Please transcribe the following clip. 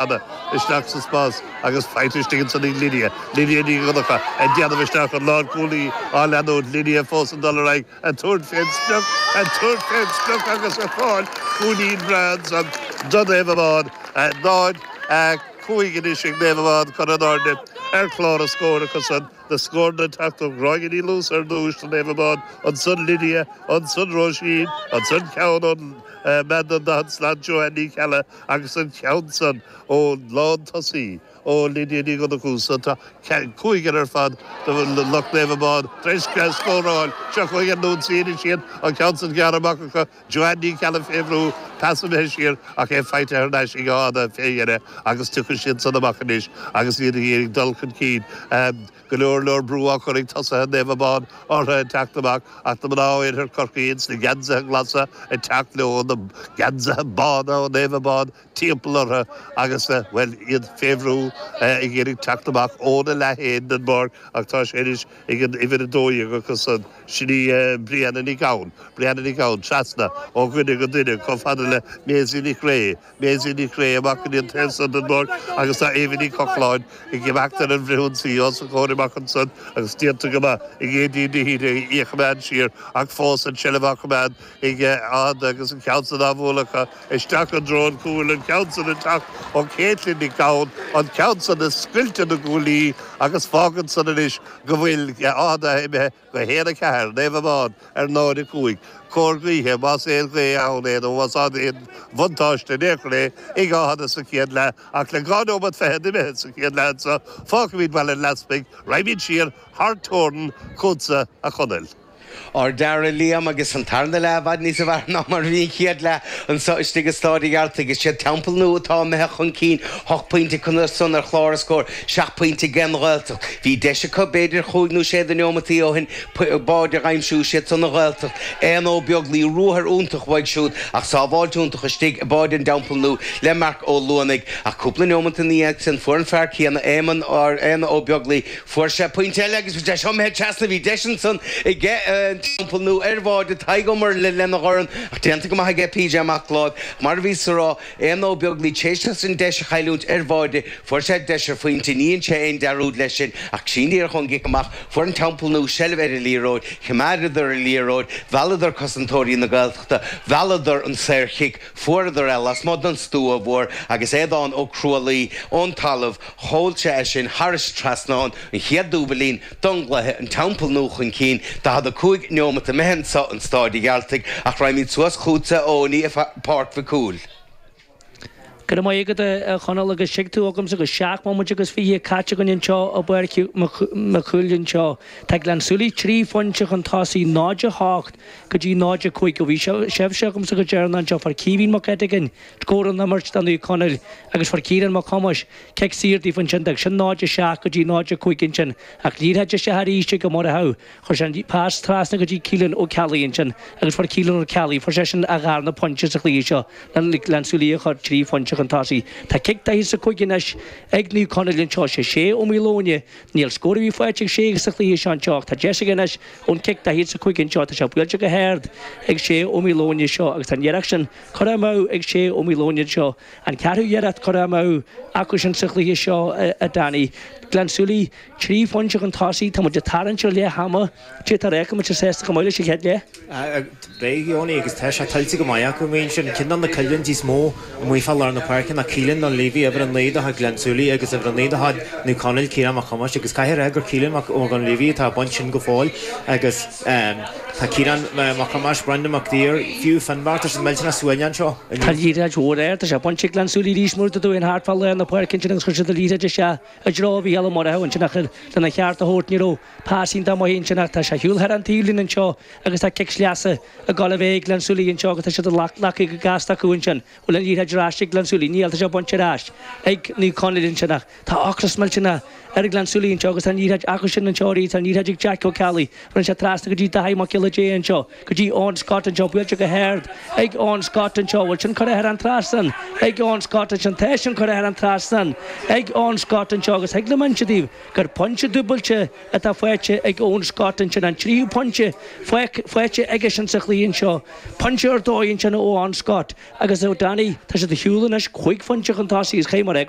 Anna, Isteach sa spás agus faighte istigh ansan ag Lydia, Lydia Ní Dhonnacha ag déanamh isteach an lár cúlaí á leanúint Lydia fós ag dul ar aghaidh ag tabhairt fén sprioc ag tabhairt fén sprioc agus ag fáil cúilín breá ansan do Naomh Abán 0, 5 anois ag Naomh Abán cur in airde ar chlár an scóir acu san na scóranna ag teacht ó Gráinne Ní Luasa ar dtúis do Naomh Abán ansan Lydia ansan Róisín ansan ceann ón mbean an daichead slat Joanne Ní Cheallaigh Agus an ceann san ón lántosaí, ó Lydia Ní Dhonnacha, so, tá cúigear ar fad de lucht Naomh Abán tar éis scóráil. Seo chugainn ag ionsaí anois iad an ceann san gearrtha amach acu. Joanne Ní Cheallaigh fé bhrú, pas imithe siar ach é faighte thar n-ais ag Áth Fhada fé dheireadh agus tiocfaidh siad san amach anois agus iad ag iarraidh dul chun cinn. Go leor leor brú á chur ag tosaithe Naomh Abán orthu ag teacht amach ach tá na mná ó oirthear Chorcaí ins na geansaithe glasa ag teacht leo na geansaithe bána ó Naomh Abán timpeall orthu agus bhuel iad fé bhrú ag iarraidh teacht amach óna leath féin den bpáirc ach tá sé anois ag an uimhir 12 acu san, sin í Brianna Nic Gabhann, Brianna Nic Gabhann, trasna ó dhuine go duine chomh fada le Maisie Nic Réidh. Maisie Nic Ghréa, amach ins an taobh san don ngort agus tá Eva Ní Chochláin ag imeacht ar an bhfrithionsaí os a comhair amach ansan agus déanta go maith ag Aideen Ní Shíthigh í a choimeád siar ach fós an tseilbh á choimeád ag Áth Fhada agus an ceann san á bhualadh acu isteach i dtreo an chúil an ceann san ag teacht ó Caitlín Nic Gabhann an ceann san ag scoilteadh na gcuaillí agus fágann san anois go bhfuil Áth Fhada imithe go 1, 4, Naomh Abán ar 0, 5, cóir gaoithe, más aon ghaoth ann é nó más ann aon bhuntáiste in aon chor é, ag Áth Fhada sa chéad leath, ach le dhá nóimeat fichead imithe sa chéad leath anso, fágfaimid Baile an Easpaig, raghaimid siar thar teorainn chútsa, a Chonaill. Ardfhear a Liam, agus an tarna leath i bhfad níosa bhfearr ná mar a bhí an chéad leath anso istigh i Staid a' Ghearaltaigh. Is iad Teampall Nua atá imithe chun cinn ocht bpointe acu san ar chlár an scóir, Seacht bpointe ag an Ghaeltacht. Bhí deis acu, b'fhéidir chúig nó sé de neomataí ó shin, báide a aimsiú. Siad san, an Ghaeltacht, Aodhna Ó Beaglaoich, ruathar iontach uaidh siúd ach sábháilt iontach istigh i mbáide an Teampaill Nua le Marc Ó Luanaigh. Ach cúpla neomat ina dhiaidh sin fuair an fear céanna, Éamonn, Aodhna Ó Beaglaoich, fuair sé pointe eile agus é imithe trasna. Bhí deis ansan aige an Teampall Nua ar bháide Tadhg Ó Muirthile lena dhorn ach déanta go maith aige PJ Mac Láimh. Mar a bhíos a rá. Aodhna Ó Beaglaoich tar éis dó an deis a chailliúint ar bháide, fuair sé deis ar phointe, ní dhein sé aon dearúd leis sin ach ansin díreach ón gcic amach, fuair an Teampall Nua seilbh ar an liathróid, choimeádadar an liathróid, mhealladar cosantóirí na Gaeltachta, mhealladar an saorchic, fuaireadar é lasmuigh den stua mhór agus Aodhán Ó Cruadhlaoich ón talamh, sheol sé é sin thar an trasnán an chéad dúbailín, don gcluiche, An Teampall Nua chun cinn 45 neomat imithe anseo in Staid an Ghearaltaigh ach raghaimíd suas chughat a Eoiní i Páirc Mhic Cumhaill. Go raibh maith agat a Chonaill agus suigh tú agamsa go seacht mbomaite agus fiche caite againn anseo i bPáirc Mhic Chumhaill anseo. Tá Gleann Súilí trí phointe chun tosaigh 0, 8 go dtí 0, 5 ó bhí sibhse agamsa go deireanach anseo fuair Caoimhín Mac Eiteagáin, Scór ón imirt do Naomh Conaill agus fuair Ciarán Mac Thomáis cic saor dóibh ansin. D'fhág sin 0-7 go dtí 0-5 ansin ach liathróid isteach arís ag Ó Murchaidh. Chuir sé an pas trasna go dtí Keelan Ó Ceallaigh ansin agus fuair Keelan Ó Ceallaigh, fuair seisean a dharna pointe sa chluiche seo le Gleann Súilí a chur trí phointe chun tosaigh. Tá cic daichead is a cúig anois ag Naomh Conaill anseo. Is é Sé Ó Maoileoin é. Níl scór ar bith faighte ag Sé sa chluiche seo anseo ach tá deis aige anois ón chic daichead is a cúig anseo. Tá sé buailte go hard ag Sé Ó Maoileoin anseo agus tá an iarracht sin Curtha amú ag Sé Ó Maoileoin anseo. An ceathrú iarracht curtha amú acusan sa chluiche seo a Danny. Gleann Súilí, trí phointe chun tosaigh, tá muid ag tarraingt ar leath ama, cé atá réidh muid sásta go maith leis an chéad leath? Beidh Eoiní agus tá sé tuillte go maith acu. Measaimse cionn de na coimhlintí is mó amuigh fá lár na páirce ná Keelan Dunleavy, uimhir a naoi de chuid Ghleann Súilí agus uimhir a naoi de chuid Naomh Conaill, Ciarán Mac Thomáis agus caithfidh a rá gur Keelan Mac Dhunleavy atá ag baint sin go fóill agus Tá Ciarán Mac Thomáis, Brendan Mac Duibhir, fiú Finbarr, tá siad millteanach suaimhneach anseo inniu. Tá liathróid mhór ard, tá sé bainte ag Gleann Súilí arís mar a dúirt Danny thart fá lár na páirce ansin agus chuir siad an liathróid isteach i dtreo Mhícheál Ó Murchaidh ansin ach ar lena cheart a thabhairt ní raibh pas iontach maith ansin ach tá sé ar shiúl thar an taobhlíne anseo agus tá cic sleasa ag dul a bheith ag Gleann Súilí anseo agus tá sé glactha go gasta acu ansin. bhfuil an liathróid ar ais ag Gleann Súilí, níl, tá sé bainte ar ais ag Naomh Conaill ansin ach tá ocras millteanach ar Ghleann Súilí anseo agus tá an liathróid acu sin anseo arís, tá an liathróid ag Jake Ó Ceallaigh, arís trasna go dtí Daithí Mac Giolla Dé anseo, go dtí Eoin Scott anseo, buailte go hard ag Eoin Scott anseo, bhfuil sin curtha thar an trasnán ag Eoin Scott ansin, tá sin curtha thar an trasnán ag Eoin Scott anseo agus thig liom a inse daoibh gur pointe dúbailte atá faighte ag Eoin Scott ansin, an tríú pointe faighte aige sin sa chluiche anseo. Pointe ar dóigh ansin ó Eoin Scott agus a Danny, tá siad ar shiúl anois cúig phointe chun tosaigh agus caithfidh mé a rá go